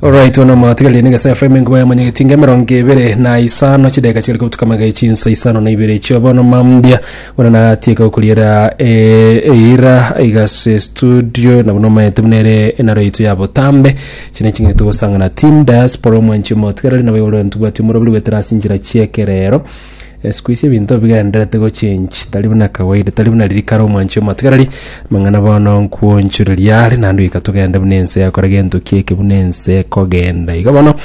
Alright, ono mwatigarie na gesa FM enkuba ya manyageti inga emerongo ebere na isano chideka chigari kobutuka magai chinsa isano na ibere chio bono mambia bono natieka gokuriera eh, eira igase studio na bono maete buna ere enaro yaito ya botambe chine ching'ete gosangana team diaspora omwanchi omotigarari nabo igoro ntubwati omorobiri gwetera ase inchera chiekerero Siku isi ebinto bigendererete gochenji, tari buna kawaida, tari buna riria kare omwanchi omoa. Tigereri amang'ana bono nkwonchoreria are, naende goika togende buna ense yakora gento kieke buna ense ekogenda. Igo bono,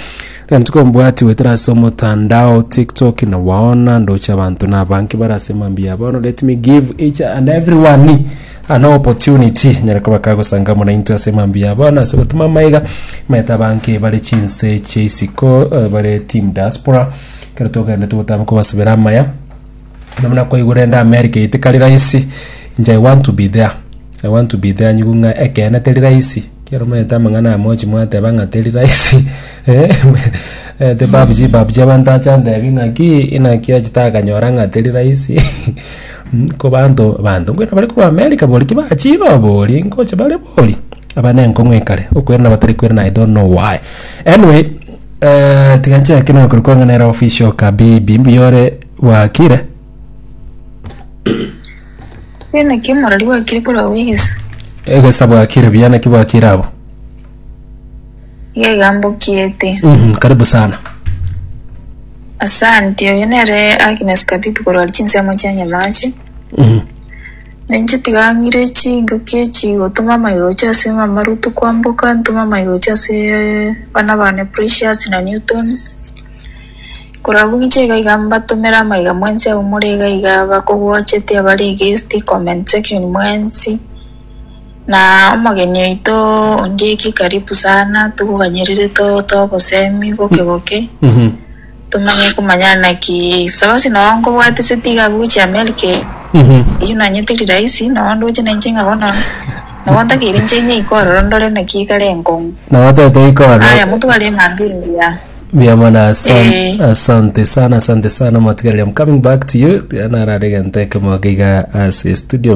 ekero tokombwati goetera ase omotandao, TikTok, na gwaona ndoche abanto na abange bare ase mambia abo. Bono let me give each and everyone an opportunity nyare koba kagosanga amo naintwe ase mambia abo na ase gotuma amaiga, omanyete abange bare chinse chia isiko, bare team diaspora, Ekero togenderete gotama kobasibera amaya, nabo nakoigwa rende America eye tekari rahisi, inche I want to be there, I want to be there nyigwe ng'a ekeene teri rahisi, ekero omanyete amang'ana aya mwanchi mwateba ng'a teri rahisi eh, omanyete babuchie babuchie abanto ache antebi ng'akii inaki achi takanyora ng'a teri rahisi ko banto banto nkwera bare korwa America boria tibachire oboria nkoche bare boria, aba nenkong'u ekare, okwera nabatari kwera naye I don't know why. Anyway. Eh, tiga nchake nokore kwang'ana era ofisi oka bibi mbuyore bwakire. Bena ki morari gwakire korwa wegesa? Egesa bwakire buya naki bwakire abo. Gegambo kiete. Mhm, karibu sana. Asante, oyo nere Agnes Kabibi korwa chinsemo chia Nyamache. Na inche tiga ng'ire chinduki echi igotoma amaigochi ase mama Rutu kwamboka, ntome amaigochi ase bana bane Precious na Newton. Korabwo ng'iche iga iga mbatomere amaiga mwensi abwo more iga iga abakogochete abare guest comment section mwensi. Na omogeni oito Ondieki karibu sana, tokoganyerire to togosemi boke boke. Tomanye komanya naki sosi noo nkobwate se tiga abwo gochia America eye. Eyio nanye teri rahisi noo ndoche na inche ng'a bono nabo ntakeire inche inye iko ororo ndore naki kare nkong'u. Nabo tete ikoro. Aya motware eng'ambi engiya. Mbuya mono asante, Eh. asante sana asante sana motigaria I'm coming back to you narare egento ekemo iga ase studio